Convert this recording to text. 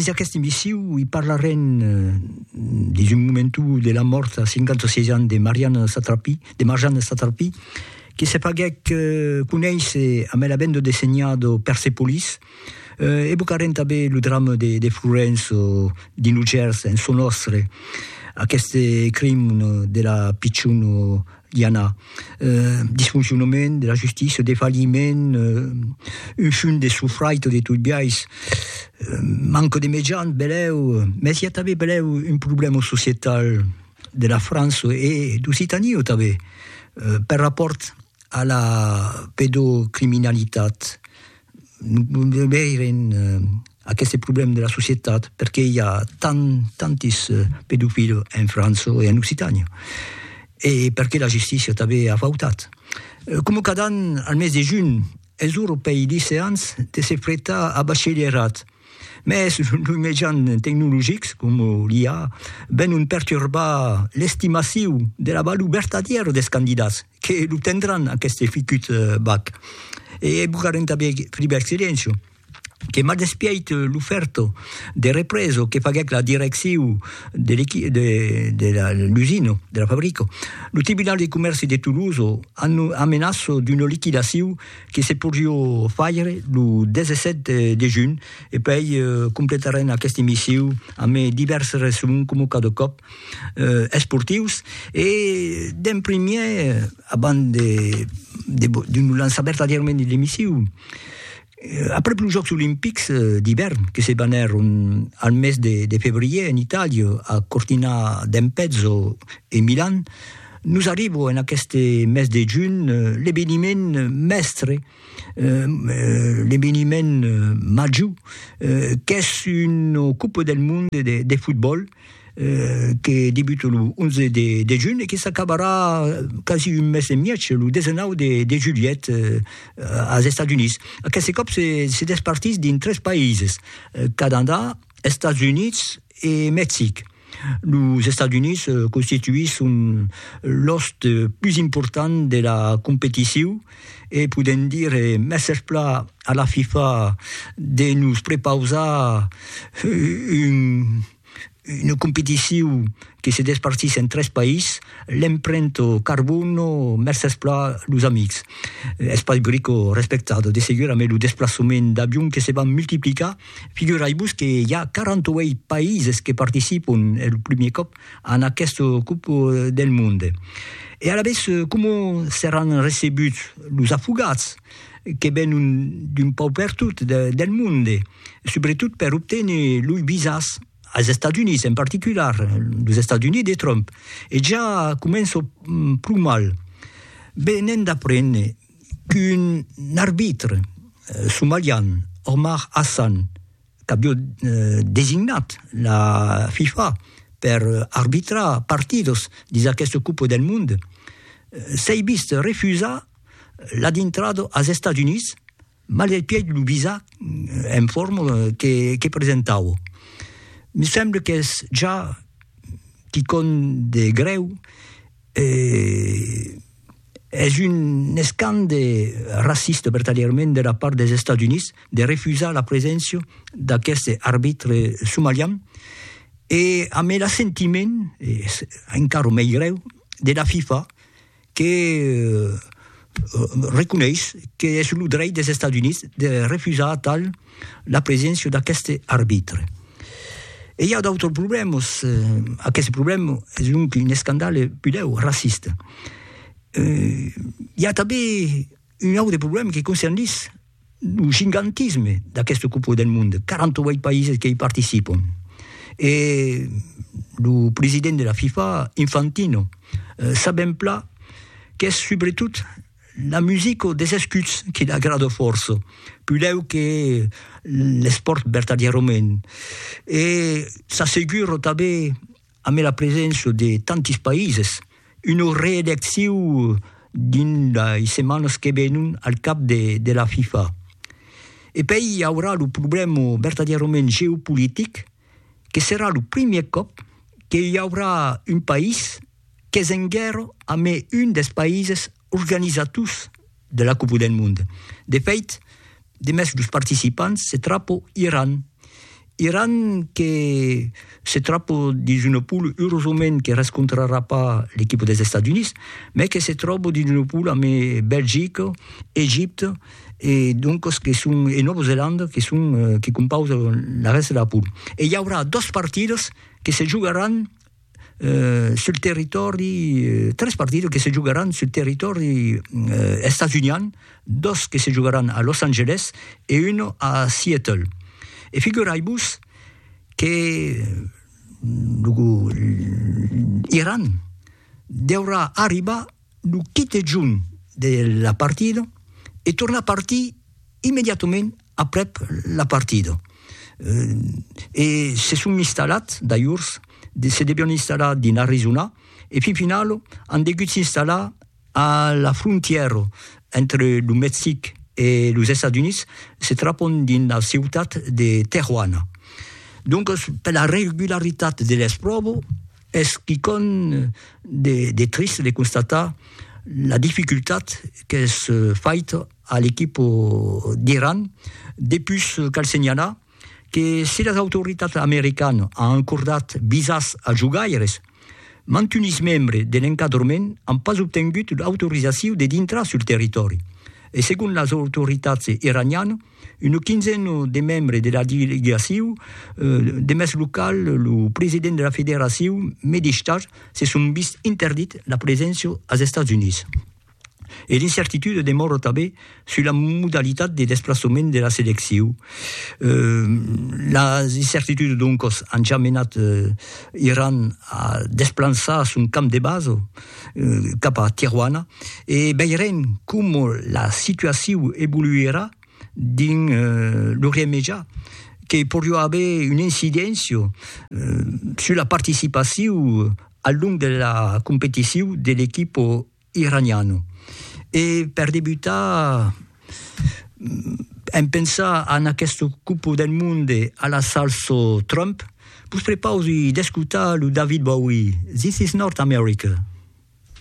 des aquesta emissiu i parlarem eh, des un momentu de la mort a 56 ans de Marianne Satrapi, de Marjane Satrapi, que se faguèc eh, conéisser amb la benda de senhado Persepolis, eh, evocarem també lo drama de, de Florenzo, dins lo gers, en son òstre, aqueste crim de la pichon i a un disfoncionament de la justícia, un defalhiment, un fum de sofraito de tot biais, manca de mejans, belèu, mès i a tanben belèu un problèma societal de la França e d'Occitània tanben, per rapòrt a la pedocriminalitat. de veire en aqueste problème de la societat, perqué i a tant, tantis pedofils en França e en Occitània, e perqué la justícia tanben a fautat. Coma cada an, al mes de junh, es europei liceans de se pretar a bachelièrat, Mès los mejans tecnologics, coma l'IA, venon perturbar l'estimaciu de la valor vertadièra dels candidats que lo tendràn aqueste fucut bac. E bugarem tanben privèr Silencio, que maldespièit l'ofèrta de represa que faguèc la direccion de de la l'usina, de la fabrica. Lo Tribunal de Comèrci de Tolosa amenaça d'una liquidacion que se podrió faire lo 17 de junh e puèi completarem aquesta emissiu amb divèrses resuments coma cada còp esportius e d'en primièr abans de nos lançar vertadièrament dins l'emissiu aprèp los jòcs olimpics d'ivèrn que se banèron al mes de febrièr en Itàlia a Cortina d'Ampezzo e Milan Nos arribo en aqueste mes de junh l'eveniment mèstre, l'eveniment major, qu'es una Copa del Mond de Fotbòl que debuta lo 11 de junh e que s'acabarà quasi un mes e mièg, lo 19 de julhet, als Estats Units. Aqueste còp se despartís dins tres païses, Canadà, Estats Units e Mexic. Los Estats Units constituisson l'òste pus important de la competicion e podèm dire mèsserpla a la FIFA de nos prepausar una competicion que se despartís en tres país, l'emprento carbono, mèsserpla los amics. Es pas brico respectat, de segur, amé lo desplaçament d'avion que se van multiplicar Figurai-vos que i a 48 païses que participon el primier còp a aquesta Copa del Monde. E alavetz coma seràn recebuts los afogats que venon d'un pauc pertot del monde, subretot per obténer loi visas als Estats Units, en particular los Estats Units de Trump. E ja començo pro mal. Venent d'apréner qu'un arbitre somalian, Omar Hassan, qu'avió designat la FIFA per arbitrar partidos dins aquesta Copa del Mond, s'ei vist refusar la dintrada als Estats Units Mal del pièd lo visà en forma que presentavo. Me semble qu'es ja quicòm de grèu e es un escand de racista vertadièrament de la part dels Estats Units de refusar la preséncia d'aqueste arbitre somalian e amé l'assentiment, es encara mei grèu, de la FIFA que reconeis qu'es lo dreit des Estats Units de refusar atal la preséncia d'aqueste arbitre. E i a d'autres problèmas, aqueste problèma es donc un escandale pudèu raciste. I a tanben Un aute problèma que concernís lo gigantisme d'aqueste Copa del Mond, 48 païses que i participon. E lo president de la FIFA, Infantino, sabèm plan qu'es subretot la musica des escuts que l'agrada fòrça, pudèu que l'espòrt vertadièrament. E s'assegura tanben amé la preséncia de tantis païses, una reedecciu dins lei setmanas que venon al cap de la FIFA. E pei i aurà lo problèma vertadièrament geopolitic que serà lo primièr còp que i aurà un país qu'es en guèrra amé un dels païses Organizators de la Copa del Mond. De fait, demest los participants se trapo Iran. Iran que se trapo dins una pool, eurosament que rescontrarà pas l'equipa dels Estats Units, mai que se tròbo dins una pool amb Belgica, Egipte e doncas que son e Nòva Zelanda que son que compausan la rèsta de la pool. E i aurà dos partidas que se jogaràn sul territòri, tres partidas que se jogaràn sul territòri estats-unian, dos que se jogaràn a Los Angeles e un a Seattle. E figurai-vos que lo Iran deurà arribar Lo quite junh de la partida e tornar partir immediatament aprèp la partida. E se son installat, d'ajors, se devion installar dins Arizona e fin final an degut s'installar a la frontièra entre lo Mexic e los Estats Units, se trapon dins la ciutat de Tejuana. Doncas, per la regularitat de l'espròva, Es quicòm de trist de constatar la dificultat qu'es faita a l'equip d'Iran, depus cal senhalar que si las autoritats americanas an acordat visas als jogaires, mantunis membres de l'encadrament an pas obtengut l'autorizacion de dintrar sul territòri e segon las autoritats iranianas, Una quinzena de membres de la delegacion de mès local, lo president de la federacion Medistar, se son vist interdit la preséncia als Estats Units. E l'incertitude demòra tanben sus la modalitat de desplaçament de la seleccion. Las incertitudes doncas an ja menat Iran a desplançar son camp de basa cap a Tijuana e veirem coma la situacion evoluerà dins lo remejar que poriá aver una incidéncia sus la participacion al long de la competicion de l'equipa iraniana. E per debutar. en pensar en aquesta copa del monde a la salsa Trump, vos prepausi d'escotar lo David Bowie, This is North America.